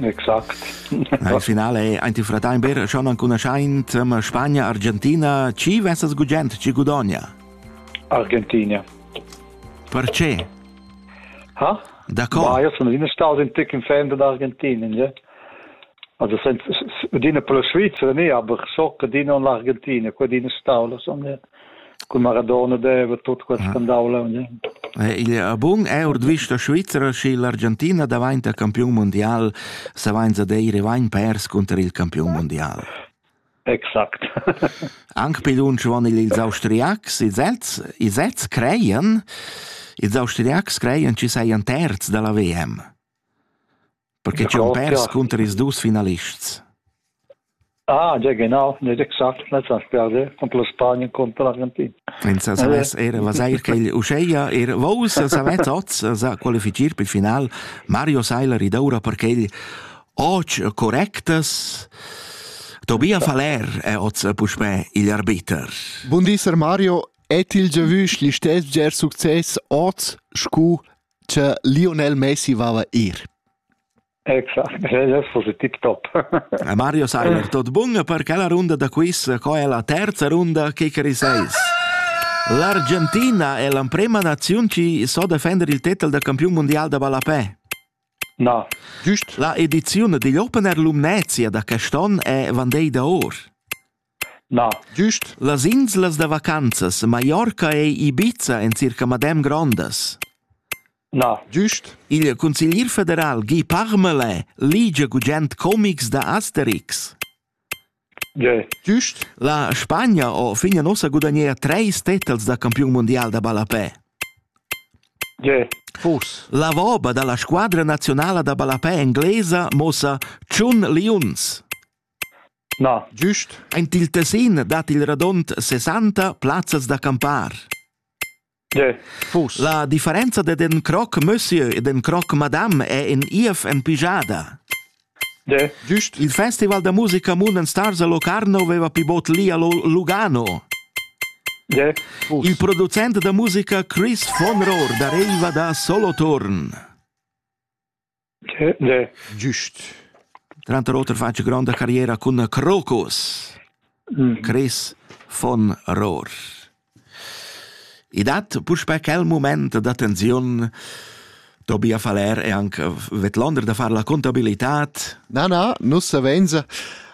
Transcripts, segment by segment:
Exact. Il finale è ein ti fratemper schon anconoscent ma Spagna Argentina chi vesas gugent chi gudogna? Argentina. Perché? Ha? D'accord. Ma io sono in stato in ticking fan dell'Argentina, ja. Also sind die pro Schweizer nicht, aber so die on l'Argentina, quelle in stato, so, ja. Cun Maradona deva tut quel scandau leu. Il bun è ord vista svizra schi l'Argentina daventa campiun mondial se vainza deire vain pers conter il campiun mondial. Exakt. Anche pidunch von ils austriacs, ils Ets, ils Ets creien, ils austriacs creien ci sei un terz della VM. Perche ch'eu pers cunter ils dus finalists. Ah, già genau, nicht exakt, letzter Sperde contro Spanien contro l'Argentina. In sa savess era was eir quel uscheia er vos savess oz sa qualifichir per final Mario Seiler id oura perché oggi correctas Tobia Faller è oz puspè il arbiter. Bun dis Mario, et il giavüsch l'istess ger success oz scu Cha Lionel Messi vava ir. Exact, ellas fosse tip top. Mario Sayer, tot bun per quella runda da quiz, co è la terza runda che cari seis? L'Argentina è l'emprema nazione che so defender il titel da campion mondial da ballapè. No. Giust. La edizione degli Open Air Lumnezia da quest'anno è Van Day da Or. Na. Güst las inslas da vacanzas Mallorca ei Ibiza en circa madem grondas. Na. Güst igl consiglier federal Guy Parmelin ligia gugent comics da Asterix. Ge. Güst la Spagna ha fin ussa gudagnea treis tetels da campiun mundial da ballapè. Ge. Fus. La voba dalla squadra nazionala da ballapè englesa mossa tschun liuns. Na. Gust aint il Tessin dat il radond sesanta plazzas da campar. La differenza dad ün croc monsieur ed ün croc madame è in ief en pijada. Gust il festival da musica Moon Stars a Locarno veva pi bod li a Lugano. Il producent da musica Chris von Rohr dareiva da Solothurn. Giust. Tranter oter fatg gronda carriera cun Crocus. Mm. Chris von Rohr. I dat puspè quel moment da tensiun Tobias Faller e anche Vetlonder da far la contabilità. Na, na, nus savenza.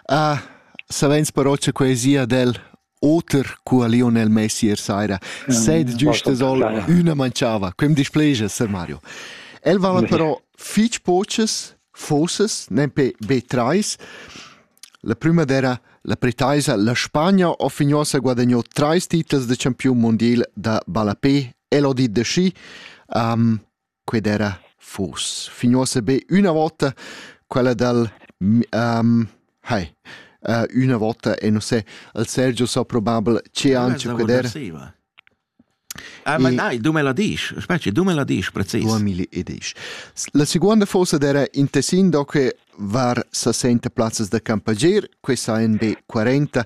Uh, savenz però c'è quesia del Oter cu a Lionel Messi ier saira sed giusta sola üna manchava. Quem displegia, Sir Mario. El vala però fich pochas fossas, nempe be trais. La prima era la pretaisa, la Spagna offignosa guadagnò trais titels de campiun mondial da ballapé, el ho dit da schi. Um, qued era fos fin uossa be üna vota quella dal um, hai uh, üna vota e non sei al Sergio so probabel che anche qued era Ah, ma dai, du me la dici, specie, du me la dici, precis. 2010. La seconda fosa era in Tessin, do che var 60 plazzas da campagier, questa NB40,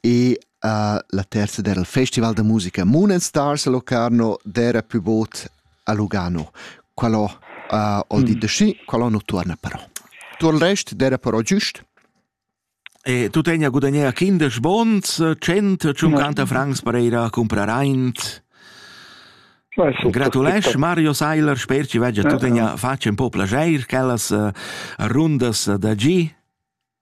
e uh, la terza era il Festival da musica Moon and Stars a Locarno, d'era più bot a Lugano. Quello uh, vuol mm. dire de sci, quello non torna però. Tu il rest era però giust? E tu tegna gudagnea kindisch bons, 150 ja. francs per ir a comprar eins. Gratulais, Mario Seiler, sper ci veggia, tu tegna faccia un po' placer, quellas uh, rundas da G.